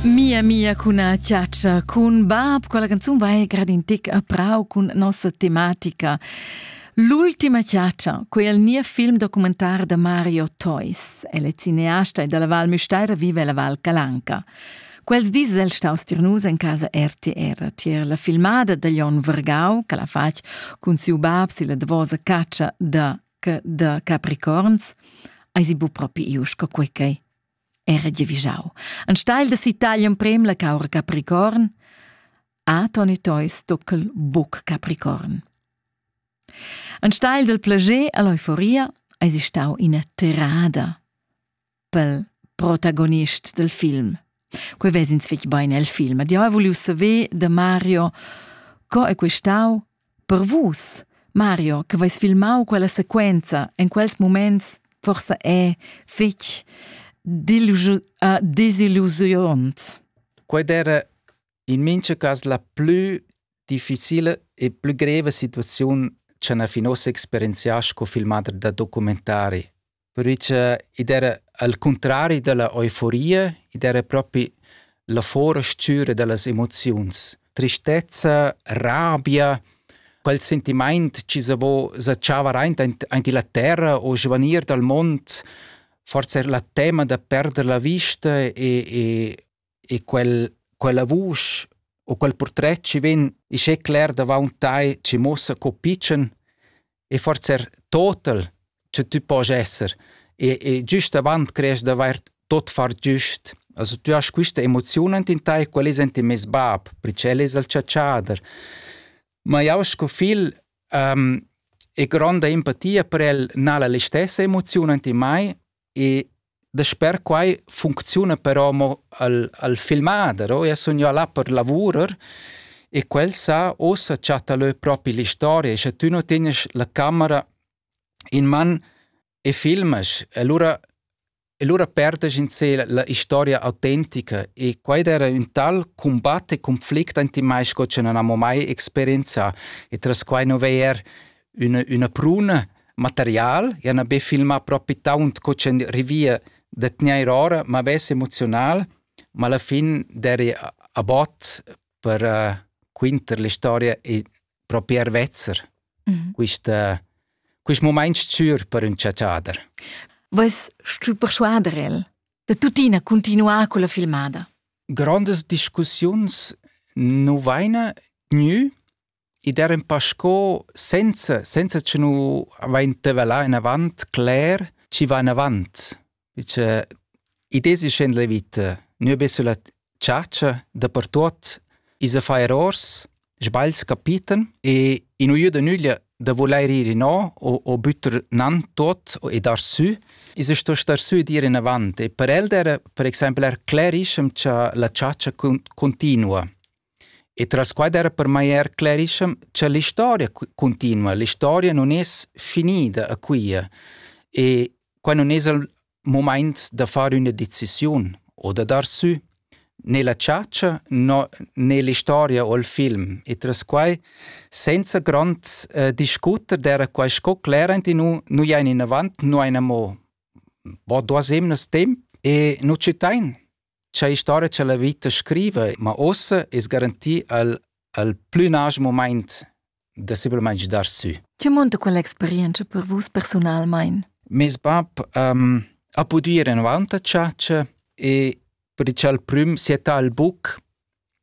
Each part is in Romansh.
Mia mia cuna ciaccia cun bab, quella canzun va grad in tic a prau cun nossa tematica. L'ultima ciaccia, quei è il mio film documentar da Mario Toys. El è cineasta e dalla Val Müstaira vive la Val Calanca. Quels dis el staus tirnus en casa RTR tier la filmada da Jon Vergau, che la fatg cun siu bab si la davosa caccia da, da Capricorns. Ai si bu propi ius co quei era giavischau. Enstagl da sitar emprem la caura capricorn, Anton e Toi stockel buc capricorn. Enstagl dal plager e l'euforia eis stau ina tirada pel protagonist del film. Quei vesins fetg bein el film. Ed jeu hai vuliu saver da Mario co è questau Per vus, Mario, che veis filmau quella sequenza en quels muments forsa è fetg dillu- uh, disillusiunant. Quei era in mincha cas la plü difficile e plü greva situaziun cha na fin ossa experienziasch co filmader da documentari. Perche id era al cuntrari da la euforia, id era propi la forastüra da las emoziuns. Tristezza, rabia, quel sentimaint chi se vo zatschava raint aint illa terra o svanir dal mond, forsa er la tema da perder la vista e, e e quel, quella vusch u quel purtret chi vegn ischè cler davaunt tai chi muossa co pitschen e forsa er total cha tü posch esser e, e giüst avant creesch d'avair tot far giüst. Also tü hast quista emoziun ant in tai, quel es ant in meis bab, perché el es il chatschader. Ma jau sco figl um, e gronda empatia per el n'ha'l la stessa emoziun ant in mai E dasper quai funcziuna però mo al, al filmader, o? Eu sun jo là per lavurer e quel sa, uossa chatta lö propi l'istoria e sche tü nu tegnes la camera in man e filmas, allura e lura perdas in se la, la historia autentica e quaid era ün tal combatt e conflict ant i mai sco che non amo mai experienzà e tras quai nu veer üna, üna pruna material, ja n'ha be filmà propi taunt co ch'ün rivia da tgnair ora, ma vess emoziunal, ma alla fin d'eri a bot per uh, quinter l'istoria e propi er vezzer mhm. quista, quist mumaint s-chür per ün chatschader. Vois stü persuader el da tuttina continuar con la filmada? Grandes discussiuns nu vaina gnü ed er in pa sco senza, senza che nu avainta là enavant cler chi va enavant. Perche id es in la vita. Nua be sulla chatscha dapertuot is a far errors, sbagls capitan e in nu jüda nüglia da vulair ir inò o, o büttar nan tot e dar sü, is a sto star sü ed ir inavant. E per el era, per exempel, er clerischem cha la chatscha cun, continua. E tras quai era per mai er sclerischem cha l'istoria cuntinua, l'istoria nun es finida a quia e quai nun es il mumaint da far üna decisiun o da dar sü né la chatscha no né l'istoria o il film. E tras quai, senza grand eh, discuter, d'era quai sco clerant in nu, nu jain inavant, nu ain amo bod duas emnas temp e nu citain. cha historia cha la vita scriva, ma uossa es garantì al al plü nasch mumaint da simplamaing dar sü. Che munta quell'experienza per vus personalmaing? Meis bap um, ha pudü ir avanti a chatscha e per il prüm siettà al buc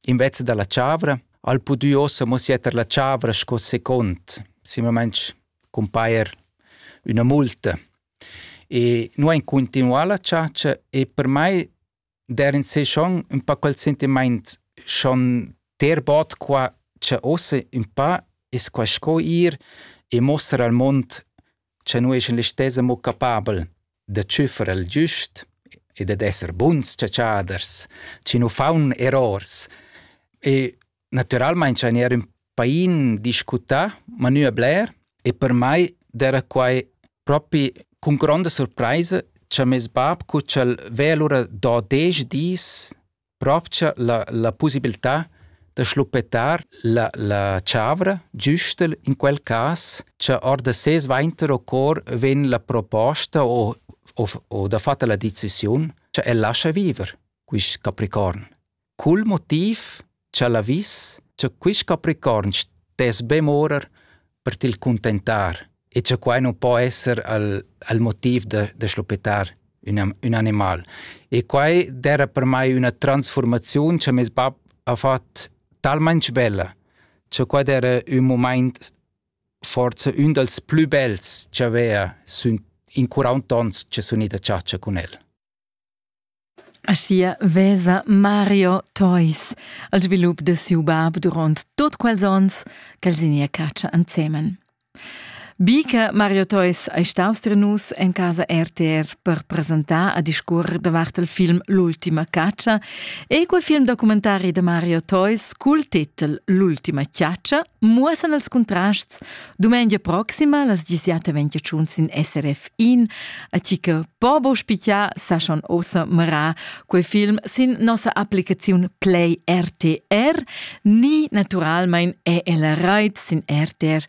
invece da la chavra, al pudü ossa mo sietter la chavra sco second, simplamaing cumpajer üna multa. E nu ein continuà la chatscha e per mai der in se schon un pa quel sentiment schon ter bod qua cha ossa un pa es qua sco ir e mostrar al mond cha nu es in listessa mo capabel da tschüffer al giust e dad esser buns chatschaders, chi nu faun errors. E Naturalmein schein er ün pain discutar, ma nu a bler, e per mai d'era quai propi cun gronda surpraisa cha meis bab cu ch'el vea lura do desch dis propcha la, la pussibiltà da schluppetar la, la chavra giustel in quel cas cha or da ses vainter o cor vegn la proposta o, o, o dafatta la decisiun cha el lascha viver, quist Capricorn. Cul motiv cha la vis cha quist capricorn stess be morer per til cuntentar e cha quai nu po esser al, al motiv da, da schluppetar ün, ün animal. E quai d'eira per mai üna transfurmaziun cha meis bap ha fat talmain svella, cha quai d'eira ün mumaint forsa ün dals plü bels ch'avea sün in quarunt ons cha sun i da chatscha cun el. Aschia vesa Mario Theus al svilup de siu bab duront tot quels onns ch'el signia catscha ensemen. Bi che Mario Theus ei staus tier nus en casa RTR per presentar a discurrer davart il film L'ultima caccia e quel film documentari de Mario Theus cul titel L'ultima ciaccia muossen els contrasts Dumengia proxima, las 17.21 sin SRF1, a chi che pobo spicia sa schon ossa mara quei film sin nossa applicaziun Play RTR, ni naturalmein è el reit sin rtr.ch.